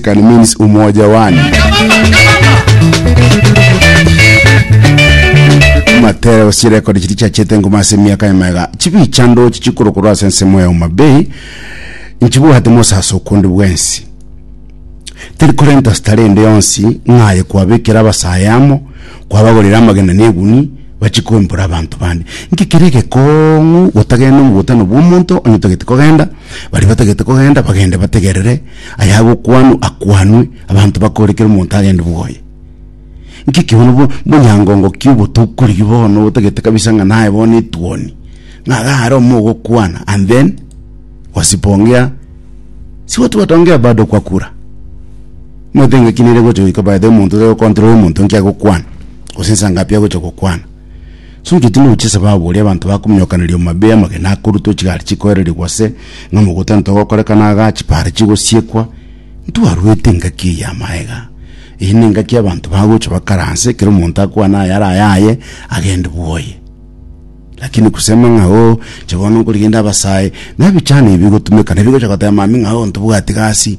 Can means umoja one. Matera osirekodi chiri chiachete ngoma ase emiaka yamaiga chibicha ndochi chikorokorwa ase ensemo ya Homa Bay nchibwate mosaso okonde bwensi teri korenta stare ende yonsi ng'aye kwabekera abasae amo kwabagorera amagena na eguni bachikoimbora abanto bande nki kere egekong'u gotagenda omogutano bwa omonto onye otagete kogenda baria batagete kogenda bagende bategerere ayagokwanwa akwanwe, abanto bakore kera omonto agende bwoye. Nki ki bono bo- bonyangongo ki obotokorigi bono obotagete kabisa ng'a naye bono etuoni, ng'a iga are omo ogokwana and then wasipongea si watu wataongea bado kwa kura. Omanyete engaki nere egocha goika by the way omonto tari gokontrola omonto nki agokwana, gose nsa ngapi agocha gokwana. Suntu timoruche esababu oria abanto bakomonyokaneria omomabe amagena akorutwa chigari chikoererigwa ase ng'a mogotana togokorekana igaa chipara chigosiekwa ntwarwete engaki eye amaega eye nengaki abanto bagocha bakaranse ekero omonto akwane aya ara ayaye agende bwoye lakini kusema ng'a oo inche bono nkorigende abasae nabichani bigotumeka nabigocha goteba mambia ng'a oo ntobwati gasi.